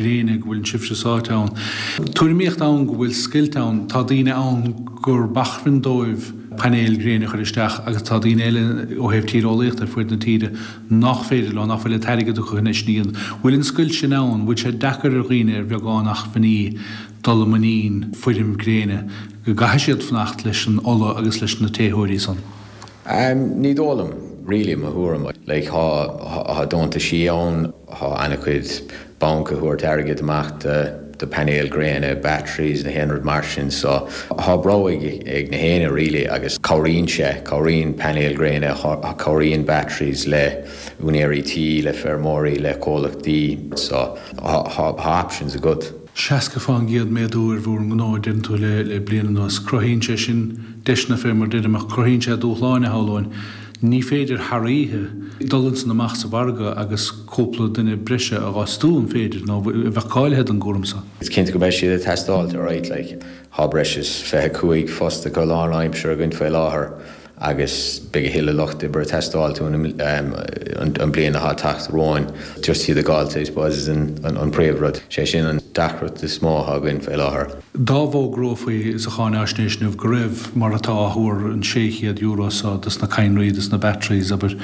léinn go bhfuileann sibhse sáite ann. Tuairimíocht ann go bhfuil scoilt ann, tá daoine ann gurb acmhainn dóibh painéil ghréine a chur isteach agus tá daoine eile, ó thaobh tíreolaíochta ar fuaid na tíre, nach féidir leo, nach bhfuil an t-airgead acu chun é sin a dhéanamh. Bhfuil an scoilt sin ann? Bhfuil sé deacair ar dhaoine ar bheagán acmhainní dul i muinín feirm gréine, go gcaithfidh siad fanacht leis an ola agus leis na téitheoirí san? Ahem, ní dóigh liom, really, mo thuairim, like, thá, thá deontaisí ann, thá ana-chuid bainc ag tabhairt airgead amach do, do painéil gréine, batteries, na haon rud mar sin, so, thá breab ag, ag na héinne, really, agus cabhraíonn sé, cabhraíonn painéil gréine, cabhraíonn batteries le úinéirí tí, le feirmeoirí, le comhlachtaí, so, thá, thá options agat. 60 fán gcéad méadú ar bhur ngnó deirtear liom le bliain anuas. Cruthaíonn sé sin deiseanna fé mar deirim, ach cruthaíonn sé dúshlán, shamhlóinn. Ní féidir thar oíche dul ins an amach sa mhargadh agus cúpla duine breise a fhostú, an féidir? Nó iad cáilithe don gcúram so. Is cinnte go mbeidh siad ag teastáilt, alright, like. Thá breis is fiche cúig fostaithe go lán-aimseartha againn faoi láthair. agus beidh a thuilleadh lucht oibre ag teastáil uainn an bhliain atá ag teacht romhainn just iad a dh'fháilt I suppose an príomh rud, sé sin an deacracht is mó atá againn faoi láthair. Dá bhfógrófaí sa cháinfháisnéis inniu go raibh, mar atá á thuar, an €600 seo dos na cadhnraí, dos na batteries, abair,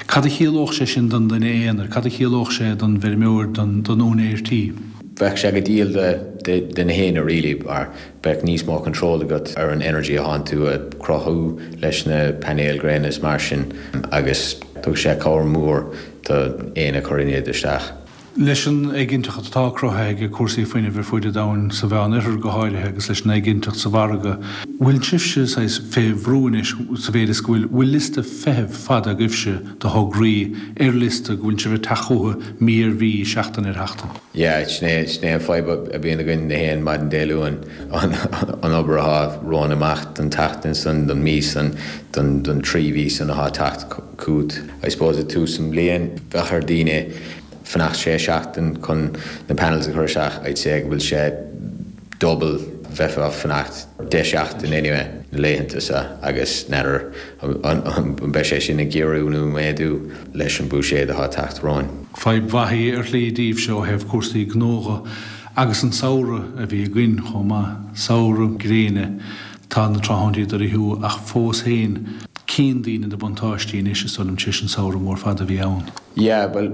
cad a chiallódh sé sin don duine aonair, cad a chiallódh sé don bhfeirmeoir, don úinéir tí? Bheadh sé go diail do na héinne really mar Beidh níos mó control agat ar an energy athánn tú ag cruthú leis na painéil gréine is mar sin agus tugann sé cabhair mhór do éinne a chuireann iad isteach. Leis an éiginnteacht atá cruthaithe ag cúrsaí fuinnimh ar fuaid an domhain, sa Mheán Oirthear go háirithe agus leis an éiginnteacht sa mhargadh, bhfuil sibhse saghas fé bhrú anois sa mhéid is go bhfuil, bhfuil liosta feithimh fada agaibhse de thograí ar liosta go bhfuil sibh ag teacht chucu mí ar mhí, seachtain ar sheachtain? Yeah, sin é, sin é an fadhb a bhíonn againn na haon maidin Dé Luain, an obair athá romhainn amach don tseachtain san, don mí san, don, don trí mhí san athá teacht chugat. I suppose i tús an bhliain bhí ar daoine fanacht sé sheachtain chun na panels a chur isteach, I'd say go bhfuil sé, double, bheifeá ag fanacht deich seachtain anyway, na laethanta seo, agus n'fheadar an mbeidh sé sin ag giorrú nó méadú leis an Búiséad atá ag teacht romhainn. Fadhb mhaith í ar shlí daoibhse ó thaobh cúrsaí gnótha agus an samhradh a bhí againn chomh maith, samhradh gréine, tá na tráthnóintí ag dul i ngiorracht ach fós féin cíonn daoine na buntáistí anois is dóigh liom tar éis an samhradh mór fada a bhí ann. Yeah, bhuel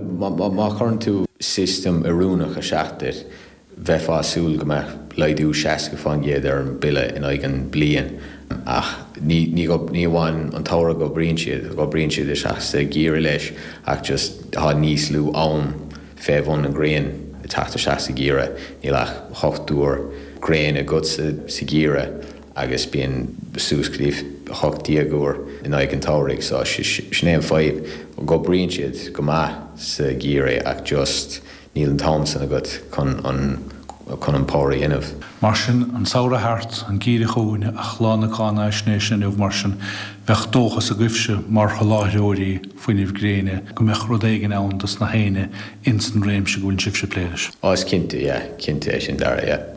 má chuireann tú system oiriúnach isteach duit, Bheifeá ag súil go mbeadh laghdú 60% ar an mbille in aghaidh an bliain ach ní ní amháin an tsamhradh go oibríonn siad, go oibríonn siad isteach sa gheimhreadh leis ach just tá níos lú am fé bhun an ghrian ag teacht isteach sa gheimhreadh. Níl ach hocht uair gréin agat sa gheimhreadh agus bíonn suas go dtí 18 uair in aghaidh an tsamhraidh so sin é an fadhb, go oibríonn siad go maith sa gheimhreadh ach just Níl an t-am san agat chun an chun an power a dhéanamh. Mar sin, an samhradh thart, an geimhreadh chugainn, is lá na cáinaisnéise inniu mar sin, bheadh dóchas agaibhse, mar sholáthróirí fuinnimh gréine, go mbeadh rud éigin ann dos nach éinne ins an réimse go bhfuil sibhse ag plé leis. Á, is cinnte, yeah, cinnte é sin, Dara, yeah.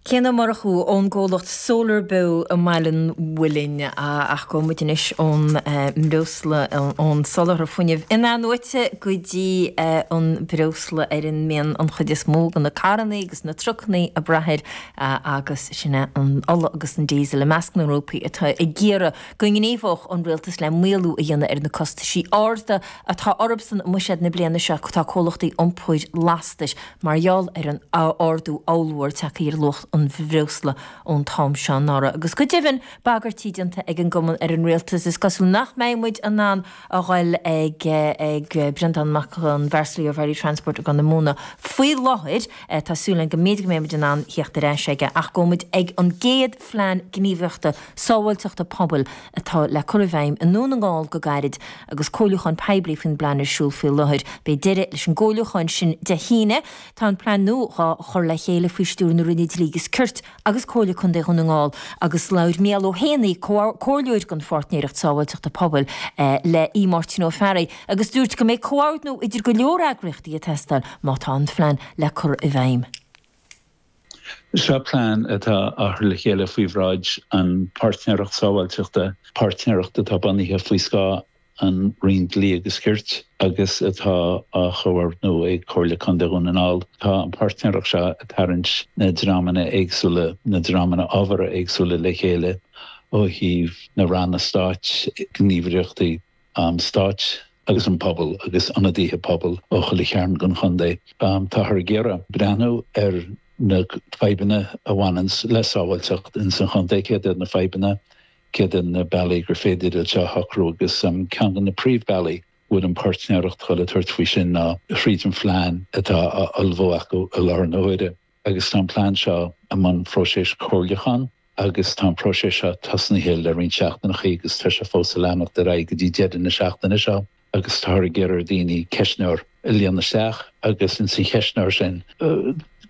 Cian Ó Murchú ón gcomhlacht Solar Beo i mBaile an Mhuilinn, ach gabhfaidh muid anois ón mbreosla, ón soláthar fuinnimh in-athnuaite go dtí an breosla ar a mbíonn an chuid is mó de na carrannaí agus na trucannaí ag brath air, agus sin é an ola agus an Diesel, i measc na ngrúpaí atá ag iarraidh go ngníomhódh an rialtas le maolú a dhéanamh ar na costaisí arda atá orthusan i mbuiséad na bliana seo tá comhlachtaí iompair lastais, Mar gheall ar an ardú ollmhór tagtha ar luach an bhreosla ón t-am seo anuraidh, agus go deimhin bagairtí déanta ag an gcumann ar an rialtas, is cosúil nach mbeidh muid in ann a dhul ag Breandán Mac an Bhearshúiligh ó Varley Transport i gCorr na Móna faoi láthair, tá súil againn go mb'fhéidir go mbeidh muid in ann theacht ar ais aige, ach gabhfaidh muid ag an gcéad phlean gníomhaíochta sábháilteachta pobail atá le cur i bhfeidhm i nDún na nGall go gairid agus comhairliúchán poiblí faoin bplean ar siúl faoi láthair. Beidh deireadh leis an gcomhairliúchán sin Dé hAoine. Tá an plean nua dhá chur le chéile faoi stiúir na Roinne Dlí agus Cirt agus Comhairle Contae Dhún na nGall agus labhair Micheál Ó hÉanaigh, Comhairleoir den Pháirtnéireacht Sábháilteachta Pobail le Aodh Máirtín Ó Fearraigh agus dúirt go mbeidh comhordú idir go leor eagraíochtaí ag teastáil má tá an phlean le cur i bhfeidhm. Seo plean atá á chur le chéile faoi bhráid an Pháirtnéireacht Sábháilteachta, páirtnéireacht atá bunaithe faoi scáth an Roinn Dlí agus Cirt agus atá á chomhordnú ag Comhairle Contae Dhún na nGall. Tá an páirtnéireacht seo ag tarraingt na dreamanna éagsúla, na dreamanna ábhartha éagsúla le chéile ó thaobh na Ranna Stáit, gníomhaireachtaí, an stáit agus an pobal agus ionadaithe pobail ó chuile chearn den chontae. Táthar ag iarraidh breathnú ar na fadhbanna a bhaineanns le sábháilteacht ins an chontae, céard iad na fadhbanna, céard iad na bealaí gur féidir iad seo a shocrú agus ceann de na príomhbealaí go bhfuil an páirtnéireacht ag dul a tabhairt faoi sin ná thríd an phlean atá á ullmhú acu i láthair na huaire. agus tá an plean seo i mbun próiseas chomhairliúcháin agus tá an próiseas seo tosnaithe le roinnt seachtaineachaí agus tá sé fós a leanacht ar aghaidh go dtí deireadh na seachtaine seo agus táthar ag iarraidh ar daoine ceistneoir a líonadh isteach agus ins an cheistneoir sin go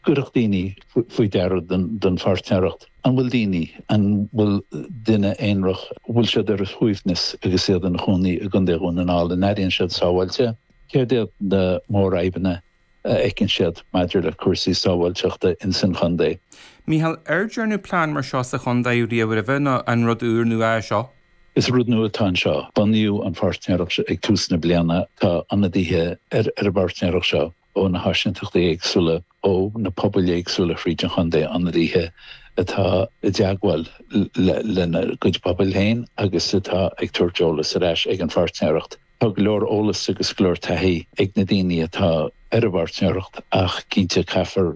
gcuirfeadh daoine faoi deara don pháirtnéireacht an bhfuil daoine, an bhfuil duine aonrach, bhfuil siad ar a shuaimhneas agus iad ina chónaí i gContae Dhún na nGall, an airíonn siad sábháilte, céard iad na mórfhadhbanna a fheiceann siad maidir le cúrsaí sábháilteachta ins an chontae. Mícheál, An dearnadh plean mar seo sa chontae riamh roimhe nó an rud úrnua é seo? Is rud nua atá anseo. Bunaíodh an pháirtnéireacht seo ag tús na bliana. Tá ionadaithe ar an bpáirtnéireacht seo ó na háisínteachtaí éagsúla, ó na pobail éagsúla thríd an chontae, ionadaithe atá i dteagmháil lena gcuid pobail féin agus atá ag tabhairt eolas ar ais ag an pháirtnéireacht. Tá go leor eolas agus go leor taithí ag na daoine atá ar an bpáirtnéireacht ach cinnte caithfear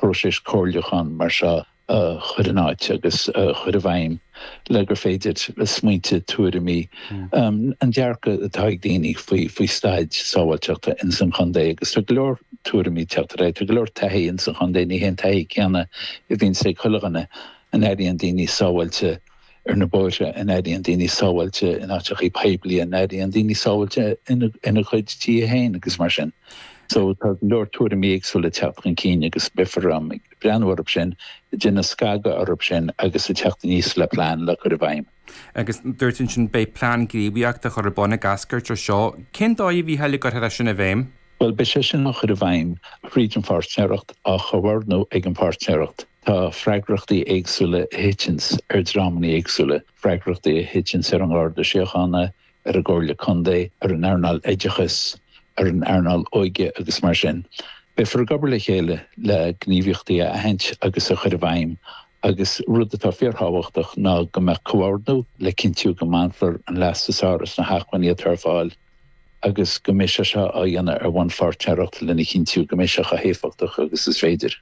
próiseas comhairliúcháin mar seo a chur in áit agus a chur i bhfeidhm le gur féidir smaointe, tuairimí, an dearcadh atá ag daoine faoi staid sábháilteachta ins an chontae agus tá go leor tuairimí ag teacht ar aghaidh. Tá go leor taithí ins an chontae, ní hé an taithí céanna a bhíonns ag chuile dhuine, an airíonn daoine sábháilte ar na bóithre an airíonn daoine sábháilte, in áiteachaí poiblí an airíonn daoine sábháilte ina gcuid tithe féin agus mar sin. So tá go leor tuairimí éagsúla ag teacht chun cinn agus beifear ag breathnú orthu sin, ag déanamh scagadh orthu sin agus ag teacht aníos le plean le cur i bhfeidhm. Agus dúirt tú ansin, beidh plean gníomhaíochta á chur ar bun ag eascairt as seo. Cén dóigh a mbeifear ag cur sin i bhfeidhm? Bhuel, beidh sé sin á chur i bhfeidhm fríd an pháirtnéireacht, á chomhordnú ag an pháirtnéireacht. Tá freagrachtaí éagsúla a thiteanns ar dreamannaí éagsúla, freagrachtaí a thiteanns ar an Gharda Síochána, ar an gComhairle Contae, ar an earnáil oideachais, ar an earnáil óige agus mar sin. Beifear ag obair le chéile le gníomhaíochtaí a aithint agus a chur i bhfeidhm agus rud atá fíorthábhachtach ná go mbeadh comhordú le cinntiú go mbainfear an leas is fearr as na hacmhainní atá ar fáil agus go mbeidh sé seo á dhéanamh ar bhonn pháirtnéireacht lena chinntiú go mbeidh sé chomh héifeachtach agus is féidir.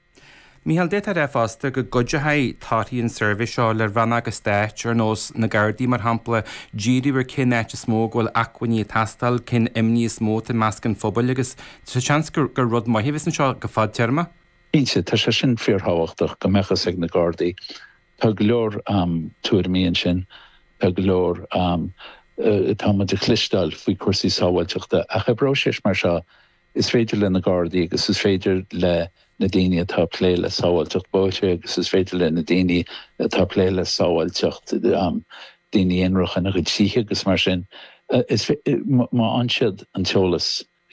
Mícheál, D'fhéadfadh a bheith fosta go gcuideoidh torthaí an tsuirbhé seo le Rannóga Stáit ar nós na Gardaí mar shampla, díriú ar cén áit is mó go bhfuil acmhainní ag teastáil, cén imní is mó atá i measc an phobail agus tá seans gur rud maith a bheas anseo go fadtéarma. Cinnte, tá sé sin fíorthábhachtach go mbeadh fhios ag na Gardaí. Tá go leor tuairimí ansin, tá go leor, tá muid ag cloisteáil faoi chúrsaí sábháilteachta ach i bpróiseas mar seo, Is féidir le na Gardaí agus is féidir le na daoine atá ag plé le sábháilteacht bóithre agus is féidir le na daoine atá ag plé le sábháilteacht daoine aonarach ina gcuid tithe agus mar sin, is fé-, má fhaigheann siad an t-eolas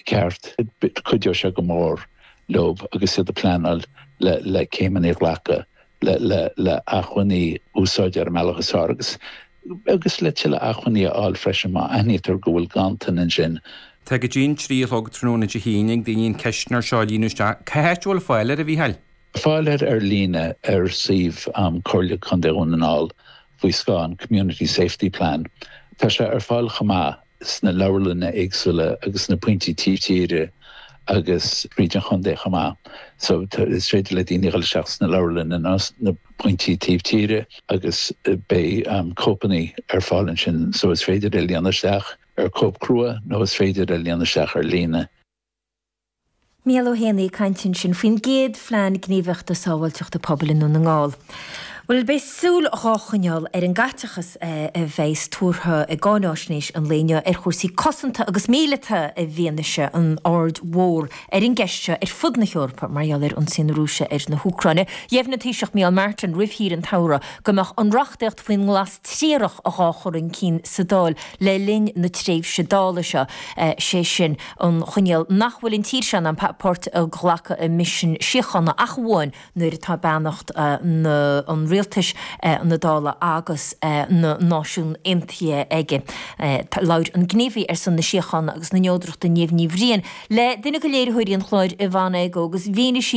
ceart, cuideoidh sé go mór leo agus iad ag pleanáil le, le céimeanna a ghlacadh, le, le, le acmhainní a úsáid ar an mbealach is fearr agus. agus le tuilleadh acmhainní a fháil freisin má aithnítear go bhfuil ganntan ann ansin. Tá go dtí an trí a chlog tráthnóna Dé hAoine ag daoine an ceistneoir seo a líonadh isteach. Cén áit a bhfuil fáil air, a Mhícheáil? Tá fáil air ar líne ar suíomh Comhairle Contae Dhún na nGall faoi scáth an Community Safety Plan. Tá sé ar fáil chomh maith sna leabharlanna éagsúla agus sna pointí taobh tíre fríd an chontae chomh maith. So, is féidir le daoine dhul isteach sna leabharlanna nó sna pointí taobh tíre agus beidh cóipeanna ar fáil ansin so is féidir é a líonadh isteach ar cóip crua nó is féidir é a líonadh isteach ar líne. Mícheál Ó hÉanaigh ag caint ansin faoin gcéad Phlean Gníomhaíochta Sábháilteachta Pobail i nDún na nGall. Bhuel, beidh súil dhá choinneáil ar an gcaiteachas a bheas tuartha i gcáináisnéis an lae inniu ar chúrsaí cosanta agus míleata i bhfianaise an aird mhór ar an gceist seo ar fud na hEorpa mar gheall ar ionsaí na Rúise ar an Úcráin. Dheimhnigh an Taoiseach Micheál Martin roimh shaoire an tsamhraidh go mbeadh an reachtaíocht faoin nglas triarach dhá chur chun cinn sa Dáil le linn na tréimhse Dála seo, sé sin, an choinníoll nach bhfuil an tír seo in ann páirt a ghlacadh i misean síochána ach amháin nuair atá beannacht na an rialtais, na Dála agus na Náisiún Aontaithe aige. Labhair an gníomhaí ar son na síochána agus na neodrachta Niamh Ní Bhriain le duine de léiritheoirí an chláir, Yvonne Igoe, agus mhínigh sí